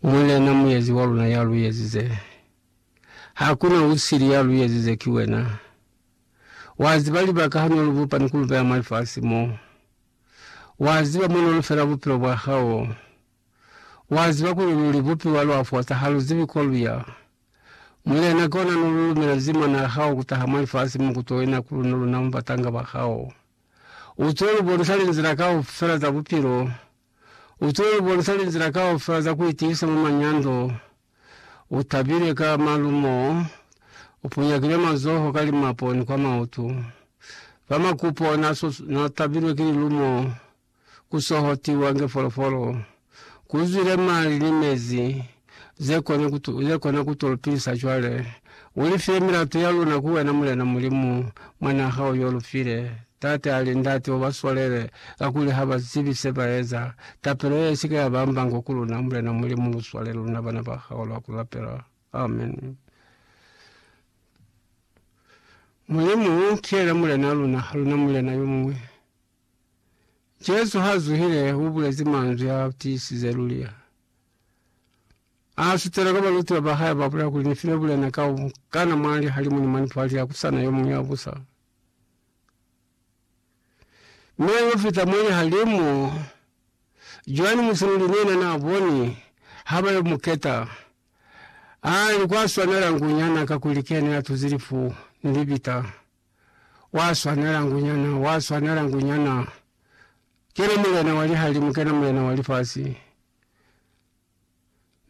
Mulena, Muyezi wa luna ya lu ezize, ha ku na u sili ya lu ezize, ki wena. Wa ziba libaka ha no lu bupa ni ku lu beya mwa lifasi mo. Wa ziba mo no lu fela bupilo bwa hao. Wa ziba kuli lu li bupiwa lwa fosa, ha lu zibi ko lu ya. Mulena, kona no lu lumela zima na hao ku taha mwa lifasi mo ku to ina ku luna, luna mu batanga ba hao. U to lu bonisa linzila kaufela za bupilo U tilo lu bonisa linzila kaufela za ku itiisa mwa manyando. U tabile ka malumo, u punyakile mazoho ka limapo ni kwa mautu. Fa makupo na so na tabilwe ki lilumo, ku sohotiwa nge folofolo. Ku zwile mali ni mezi ze kona ku tu, ze kona ku tu lupilisa cwale. U li file milato ya luna ku wena, Mulena Mulimu, Mwanaa hao yo lu file. Tate a li, Ndate, u ba swalele, kakuli ha ba zibi se ba eza. Tapelo ye isike ya ba mbango ku luna, Mulena Mulimu, lu swalele luna bana ba hao lwa ku lapela. Amen. Mulimu, ki yena Mulena luna, ha luna mulena yo muñwi. Jesu ha zuhile, u bulezi manzwi a tiisize luli, A sutela ka balutiwa ba hae, ba bulela kuli, Ni file bulena ka u kana mwa lihalimu ni mwa nipwali ya ku sa na yo muñwi ya busa. Mi a yo fita mwa lihalimu. Joani Musinuli ni yena n'a boni ha ba yo mu keta. A li kwa swanela ngunyana, kakuli ki yena ya tuzi lifu ni libita. Wa swanela ngunyana, wa swanela ngunyana. Kena Mulena wa lihalimu, kena Mulena wa lifasi.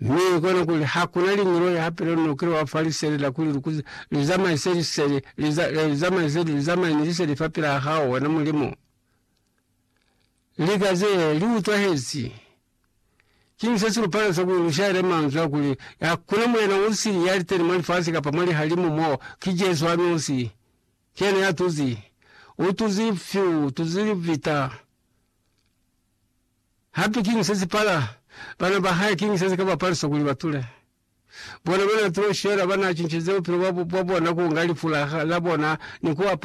Mi kona kuli hakuna liñolo ya hapelo no kilo wa falisele la kuli lukuzi lizamaise lisele lizamaise lizamaise ni lisele fa pila hao wena mulimo. Lika ze li utwahezi. King se se lupala sa kuli lushaele manzwa kuli hakuna mulena usili ya liteni mo lifasi kapa mo lihalimu mo ki Jesu anosi. Yena ya tuzi, u tuzi fyu, u tuzi libita. Hape kiñi se si pala? Bana ba hae kiñi se si ka ba palisa kuli ba tule? Bona ba na tulo shela, ba na cincize bupilo bwa bona ku nga lifu la bona ni ku apara.